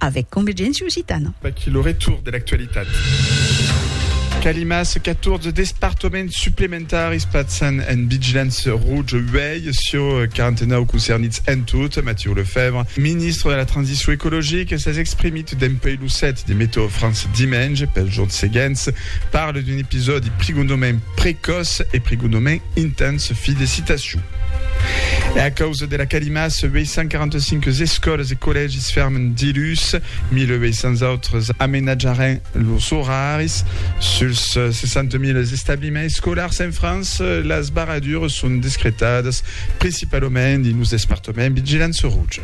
avèc Convergéncia Occitana. Vaqui lo retour de l'actualitat. Calimas, 14 despartoments suplementaris pasan en vigilança roja uèi sur 49 concernits en tot. Mathieu Lefèvre, ministre de la Transicion Ecologica, s'es exprimit dempuèi lo 7 de Meteo France dimenge. Pels jorns seguents, parle d'un episòdi prigondament precòç e prigondament intens. Fi de citacion. E a causa dera calimaça, 845 escòlas e collègis fèrmen dilhus, 1.800 autres amenatjaràn lors oraris. Suls 60.000 establiments escolars en França, las barradures son descretadas principalament dins los despartaments vigilants rouj.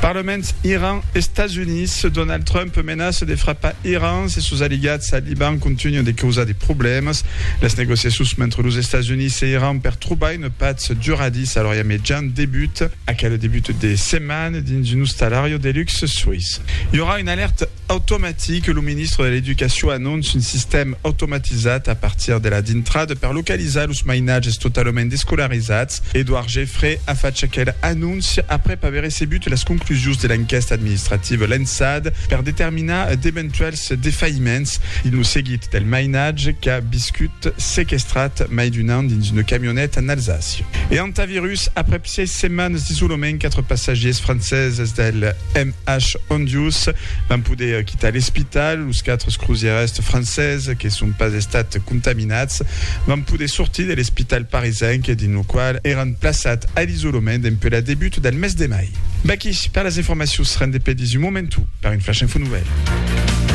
Parlement Iran, Estats Units, Donald Trump menaça de frapar Iran se sos aliats al Liban contunhan de causar de problèmas. Las negociacions mentre los Estats Units e Iran per trobar una patz duradissa a l'Orient Mejan debuta. Aquel debut de setmana dins un ostalariu de luxe suís i aurà una alèrta Automatic, lo ministre de l'Educacion anonce un sistèm automatizat a partir de la dintrada per localizar los mainatges totalament descolarizats. Edouard Geffray a fach aquel anonci aprèp aver recebut las conclusions de l'enquèsta administrativa lançada per determinar d'eventuèls defailliments dins lo seguit del mainatge qu'a viscut sequestrat mai d'un an dins una camioneta en Alsàcia e Hantavirus aprèp Sièis setmanes d'isolament, quatre passatgiers franceses del MH Hondius van poder quitar l'espital. Los quatre crosièrs franceses que son pas estats contaminats van poder sortir de l'espital parisenc dins lo qual èran plaçats a l'isolament dempuèi la debut del mes de mai. Vaqui per las informacions rendepedis un momentu per un flash info nouvèl.